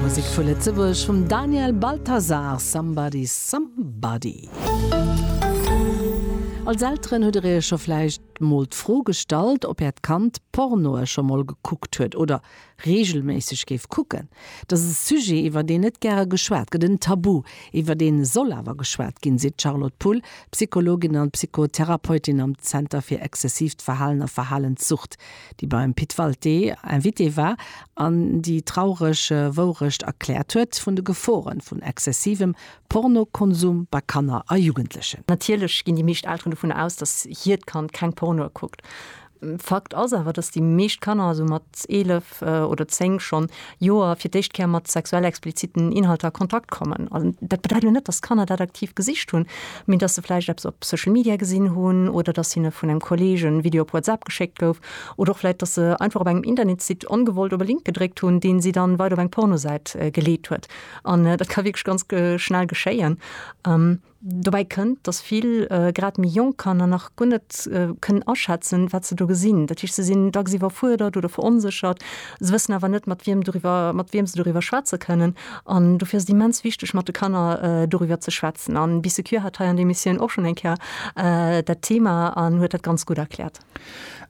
Musek vu Lëtzebuerg vum Daniel Balthasar, Somebody Somebody. Als Elteren hutt der iech scho vläicht mol d'Fro gestallt, ob äert Kand Pornoe scho mol gekuckt huet oder reegelméisseg géif kucken. Dass e Sujet, iwwer deen net gäre geschwat gëtt, en Tabu, iwwer deen e soll awer geschwat ginn, seet d'Charlotte Pull, Psychologin an Psychotherapeutin am Zenter fir exzessiivt Verhalen a Verhalenssucht. déi beim Pit Walté Invité war an déi traureg Wourecht erkläert huet vun de Geforen vun exzessivem Pornokonsum bei Kanner a Jugendlechen. Natierlech ginn déi meescht Elteren dovunner aus, dass hiert Kand keng Pornoe kuckt. Fakt ass awer, dass déi meescht Kanner esou mat 11 oder 10 schonn Joer fir d'éischt Kéier mat sexuell expliziten Inhalter a Kontakt kommen. An dat bedeit lo net, dass d'Kanner dat aktiv gesicht hunn, mee dass se vläicht eppes op Social Media gesinn hunn oder dass hinne vun engem Kolleeg en Video op WhatsApp geschéckt gouf oder och vläicht, dass se einfach op engem Internetsite ongewollt op e Link gedréckt hunn, deen si dann weider op eng Pornosäit geleet huet. An dat ka wierklech ganz schnell geschéien. Dobäi kënnt, datt vill, grad méi jonk Kanner nach guer net kënnen aschätzen, wat se do gesinn. Dat heescht, se sinn dacks iwwerfuerdert oder veronséchert. Se wëssen awer net, mat wiem doriwwer, mat wiem se doriwwer schwätze kënnen. An dofir ass et immens wichteg, mat de Kanner doriwwer ze schwätzen. A Bissecure hat hei an der Emissioun och schonn eng Kéier dat Thema an huet dat ganz gutt erkläert.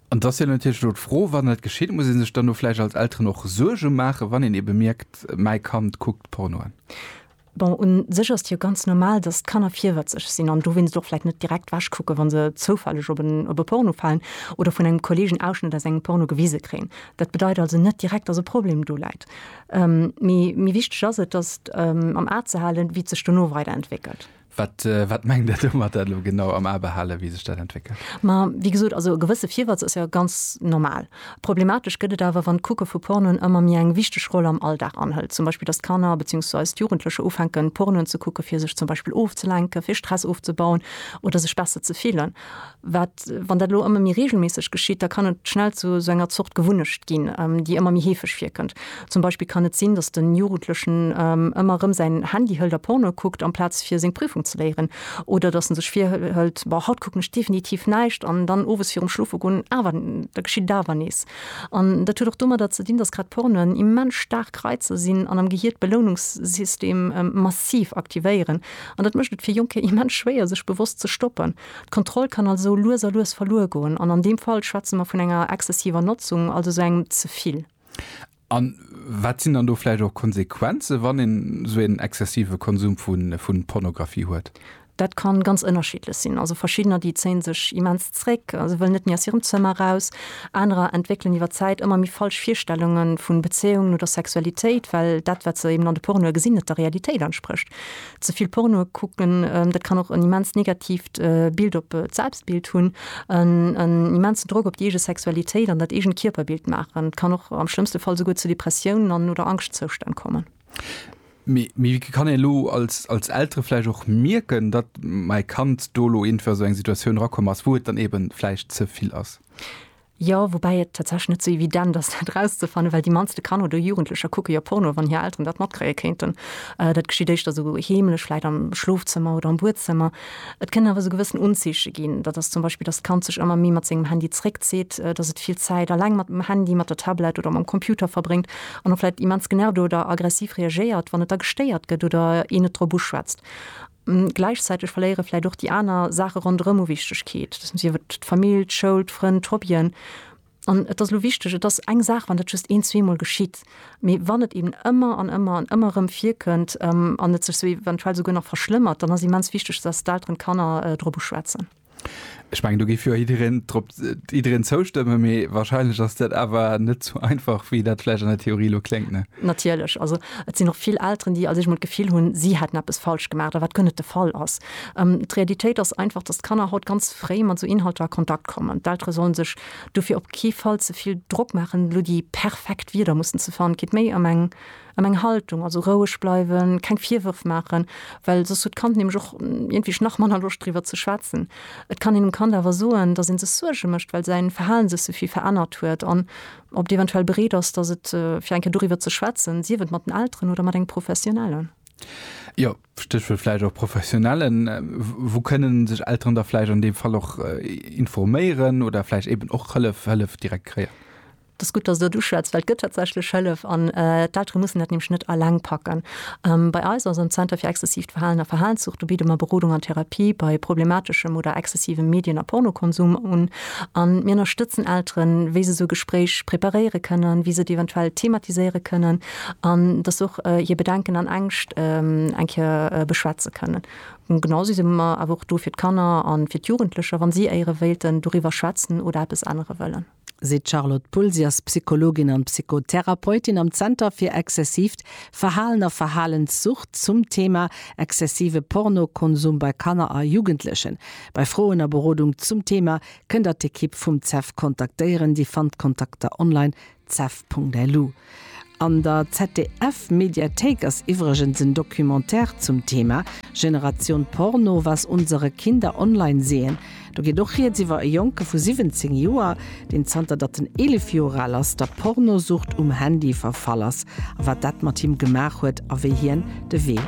An et ass jo natierlech elo d'Fro, Wann dat geschitt, muss ee sech dann do vläicht als Elteren och Suerge maachen, wann een ebe mierkt, mäi Kand kuckt Porno an? Bon, un sech ass et jo ganz normal, dass d'Kanner virwëtzeg sinn an dowéinst och vläit net direkt wech kucken, wa se zoufälleg op en op e Porno falen oder vun engem Kolleeg en Ausschnëtt aus engem Porno gewise kréien. Dat bedeit also net direkt, dass e Problem do läit. Mee méi wichteg ass et, dass am A ze halen, wéi et sech dono weider entwéckelt. Wat, wat mengt Der domat elo genau, am A behalen, wéi sech dat entwéckelt? Ma wéi gesot, also e gewësse Virwëtz ass jo ganz normal. Problematesch gëtt et awer, wann d'Kucke vu Pornoen ëmmer méi eng wichteg Roll am Alldag anhëlt. Zum Beispill, datt d'Kanner beziehungsweise d'Jugendlecher ufänken, Pornoen ze kucken, fir sech zum Beispill ofzelenken, fir Stress ofzebauen oder sech besser ze fillen. Wat, wann dat elo ëmmer méi reegelméisseg geschitt? Da kann et schnell zu esou enger Zort Gewunnecht ginn, déi ëmmer méi heefeg virkënnt. Zum Beispill kann et sinn, dass den Jugendlechen ëmmer erëm säin Handy hëlt a Porno kuckt amplaz fir seng Prüfung ze léieren. Oder dass en sech virhëlt, Boah, haut kucken ech definitiv näischt! an dann owes virum Schlofe goen awer, da geschitt et awer nees. An dat huet och domadder ze dinn, dass grad Pornoen immens staark Reizer sinn an am Gehier d'Beloununkssystem massiv aktivéieren. An dat mécht et fir Jonker immens schwéier sech bewosst ze stoppen. D'Kontroll kann also lues a lues verluer goen. An an deem Fall schwätze mer vun enger exzessiver Notzung, also esou engem Zevill. An wat sinn dann do vläicht och Konsequenzen, wann een esou een exzessive Konsum vu Pornografie huet? Dat ka ganz ënnerschiddlech sinn. Also verschiddener, déi zéie sech immens zréck, se wëllen net méi aus hirem Zëmmer eraus. Anerer entwéckelen iwwer d'Zäit ëmmer méi falsch Virstellunge vu Bezéiungen oder Sexualitéit, well dat, wat se eben an de Pornoe gesinn, net der Realitéit entsprécht. Ze vill Porno kucken, dat kann och en immens negatiivt Bild op d'Selbstbild hunn, en immensen Drock op déi eege Sexualitéit an dat eegent Kierperbild maachen. Et kann och am schlëmmste Fall souguer zu Depressiounen an oder Angschtzoustänn kommen. Mee wéi kann een elo als Eltere vläicht och mierken, datt mäi Kand do elo iergendwéi a sou eng Situatioun erakomm ass, wou et dann eeben vläicht ze vill ass? Jo, woubäi et tatsächlech net sou evident ass, dat erauszefannen, well déi mannste Kanner oder Jugendlecher kucke jo Porno, wann hir Elteren dat matkréie kéinten. Dat geschitt éischter sou heemlech, vläicht am Schlofzëmmer oder am Buedzëmmer. Et kënnen awer sou gewëssen Unzeeche ginn. Dat ass zum Beispill, dass d'Kand sech ëmmer méi mat sengem Handy zeréckzitt, dass et vill Zäit eleng mat dem Handy, mat der Tablett oder mam Computer verbréngt an och vläicht immens genervt oder aggressiv reagéiert, wann et da gestéiert gëtt oder een et drop uschwätzt. Gläichzäiteg verléiere vläicht och déi aner Saache ronderëm u Wichtegkeet, sief et d'Famill, d'Schoul, d'Frënn, d'Hobbyen. An et ass elo wichteg, et ass eng Saach, wann dat just een-, zweemol geschitt, mee wann et eben ëmmer an ëmmer an ëmmer erëm virkënnt an et sech esou eventuell souguer nach verschlëmmert, dann ass immens wichteg, dass d'Elteren d'Kanner drop uschwätzen. Ech mengen do géif jo jiddereen drop jiddereen zoustëmme mee wahrscheinlech ass dat awer net sou einfach wéi dat vläicht an der Theorie lo kléngt ne? Natierlech, also et sinn och vill Elteren déi also sech mol d'Gefill hunn si hätten eppes falsch gemaach, wat guer net de Fall ass. D'Realitéit ass einfach, datt d'Kanner haut ganz fréi mat esou Inhalter a Kontakt kommen. D'Eltere sollen sech dofir op kee Fall ze vill Drock maachen elo déi perfekt Wierder mussen ze fannen. Et geet méi ëm eng An eng Haltung, also roueg bleiwen, keng Virwërf maachen, well soss huet d'Kand nämlech och iergendwéi nach manner Loscht driwwer ze schwätzen. Et kann een dem Kand awer soen, datt ee sech Suerge mécht, well säin Verhalen sech souvill verännert huet an ob et eventuell bereet ass, datt et fir eng Kéier doriwwer ze schwätzen, sief et mat den Elteren oder mat engem Professionellen. Jo, Stéchwuert vläicht och Professionellen. Wou kënnen sech Elteren da vläicht an deem Fall och informéieren oder vläicht eeben och Hëllef, Hëllef direkt kréien? Et ass gutt, dass s de dat uschwätz, well et gëtt tatsächlech Hëllef an d'Eltere mussen dat nämlech net eleng packen. Bei eis, also am Zenter fir exzessiivt Verhalen a Verhalenszucht, do bidde mer Berodung an Therapie bei problemateschem oder exzessivem Medien a Pornokonsum un an mir ënnerstëtzen Elteren, wéi se esou Gespréich preparéiere kënnen, wéi se et eventuell thematiséiere kënnen an dass se och hir Bedenken an Ängscht eng Kéier beschwätze kënnen. Genausou si mer awer och do fir d'Kanner a fir d'Jugendlecher, wa si éiere wéilten doriwwer schwätzen oder eppes ännere wëllen. seet d'Charlotte Pull. Si ass Psychologin an Psychotherapeutin am Zenter fir exzessiivt Verhalen a Verhalenssucht zum Thema exzessive Pornokonsum bei Kanner a Jugendlechen. Bei Froen a Berodung zum Thema kënn der d'Ekipp vum CEF kontaktéieren. Dir fannt d'Kontakter online, cef.lu. An der ZDF-Mediathéik ass iwwregens en Documentaire zum Thema, Generation Porno, was unsere Kinder online sehen. Do geet och Rieds iwwer e Jonke vu 17 Joer, deen zanter datt en 11 Joer al ass, der Pornosucht um Handy verfall ass a wat dat mat him gemaach huet a wéi hien de Wee